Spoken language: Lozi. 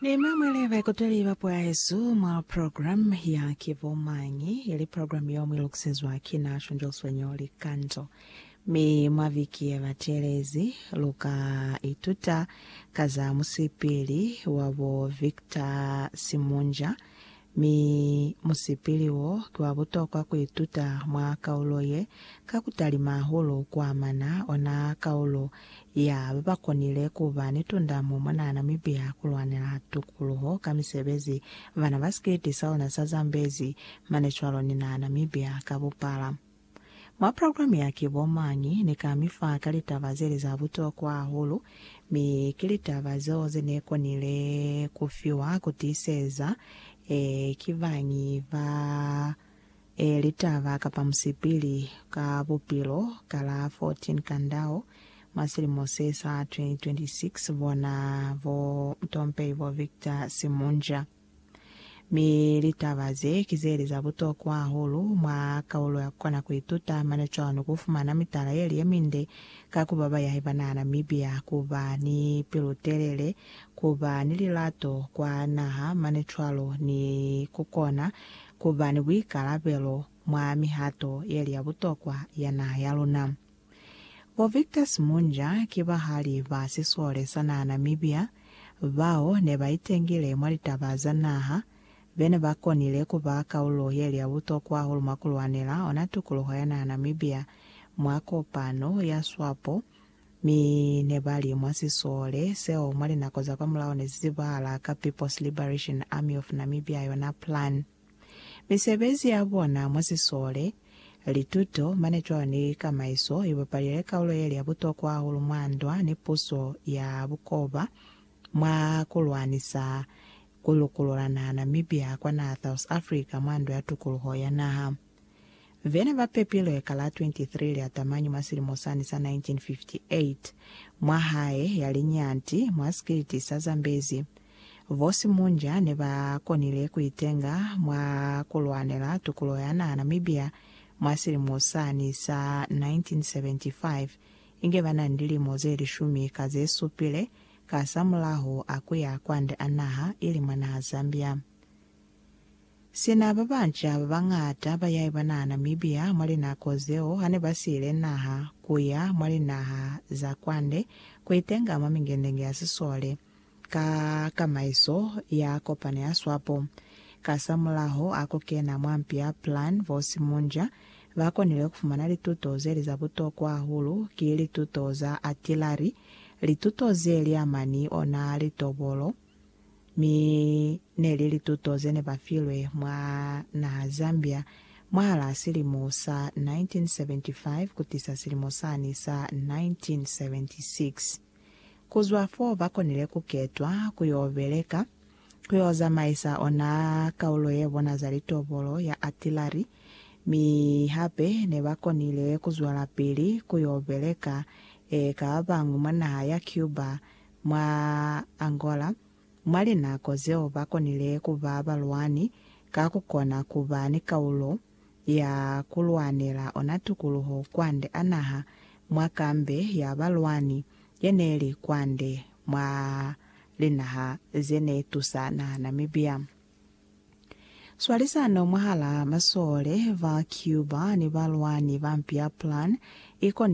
Ni mwa mwali baikuteli ba Puahesu mwa program ya Ki Bo Mañi? ili program yeo mwi lukisezwa ki na Shonjeliso Nyoo Likanzo. Mi mwa viki ye batelezi, lu ka ituta ka za musipili wa bo Victor Simunja Mi musipili wo ki wa butokwa ku ituta mwa kaulo ye, ka ku talima hahulu ku amana ona kaulo ya ba ba konile ku ba ni tundamo mona Namibia ku lwanela tukuluho ka misebezi bana ba sikiliti sa ona sa Zambezi mane cwalo ni na Namibia ka bupala. Mwa programe ya Ki Bo Mañi? ne ka mi fa ka litaba ze li za butokwa hahulu, mi ki litaba zeo ze ne konile ku fiwa ku tiiseza ee ki bañi ba ee litaba kapa musipili ka bupilo ka la 14 Kandao mwa silimo se sa 2026, bona bo Mtompei bo Victor Simunja. Mi litaba ze ki zeli za butokwa hahulu mwa kaulo ya Kukona Kuituta mane cwalo ku fumana mitala yeli ye minde ka ku ba bayahi ba naha Namibia, ku ba ni pilu-telele, ku ba ni lilato kwa naha mane cwalo ni ku kona ku ba ni buikalabelo mwa mihato yeli ya butokwa ya naha ya luna. Bo Victor Simunja ki bahali ba sisole sa naha Namibia bao ne ba itengile mwa litaba za naha, be ne ba konile ku ba kaulo ye li ya butokwa hahulu mwa ku lwanela ona tukuluho ya naha Namibia mwa kopano ya SWAPO, mi ne ba li mwa sisole seo mwa linako za kwamulaho ne si zibahala ka People's Liberation Army of Namibia yona PLAN. Misebezi ya bona mwa sisole, lituto, mane cwalo ni kamaiso i bapalile likaulo ye li ya butokwa hahulu mwa ndwa ni puso ya bukoba mwa ku lwanisa ku lukulula naha Namibia kwa naha South Africa mwa Ndo ya Tukuluho ya Naha. Vene ba pepilwe ka la 23 Liatamanyi mwa silimo sani sa 1958 mwa hae ya linyanti mwa sikiliti sa Zambezi, Bo Simunja ne ba konile ku itenga mwa ku lwanela tukulo ya naha Namibia mwa silimo sani sa 1975, inge ba na ni lilimo ze lishumi ka ze supile kasamulaho a ku ya kwande a naha, ili mwa naha Zambia. Sina ba banca ba bañata ba yaiba naha Namibia mwa linako zeo ha ne ba siile naha ku ya mwa linaha za kwande ku itenga mwa mingendenge ya sisole, ka kamaiso ya kopano ya swapo. Kasamulaho a ku kena mwa mpi ya Plan Vos Mundial, ba konile ku fumana lituto ze li za butokwa hahulu, ki lituto za artillery, lituto ze li amani ona litobolo, mi ne li lituto ze ne ba filwe mwa naha Zambia mwahalaa silimo sa 1975 kutisa silimo sani sa 1976. Ku zwa fo ba konile ku ketwa ku yo beleka, ku yo zamaisa ona kaulo ye bona za litobolo ya atilari, mi hape ne ba konile ku zwelapili ku yo beleka eka ba bañwi mwa naha ya Cuba, mwa Angola, mwa linako zeo ba konile ku ba balwani ka ku kona ku ba ni kaulo ya ku lwanela ona tukuluho kwande a naha mwa kambe ya balwani ye ne li kwande mwa linaha ze ne tusa naha Namibia. Swalisano mwahalaa masole ba Cuba ni balwani ba mpi ya Plan i konile hahulu.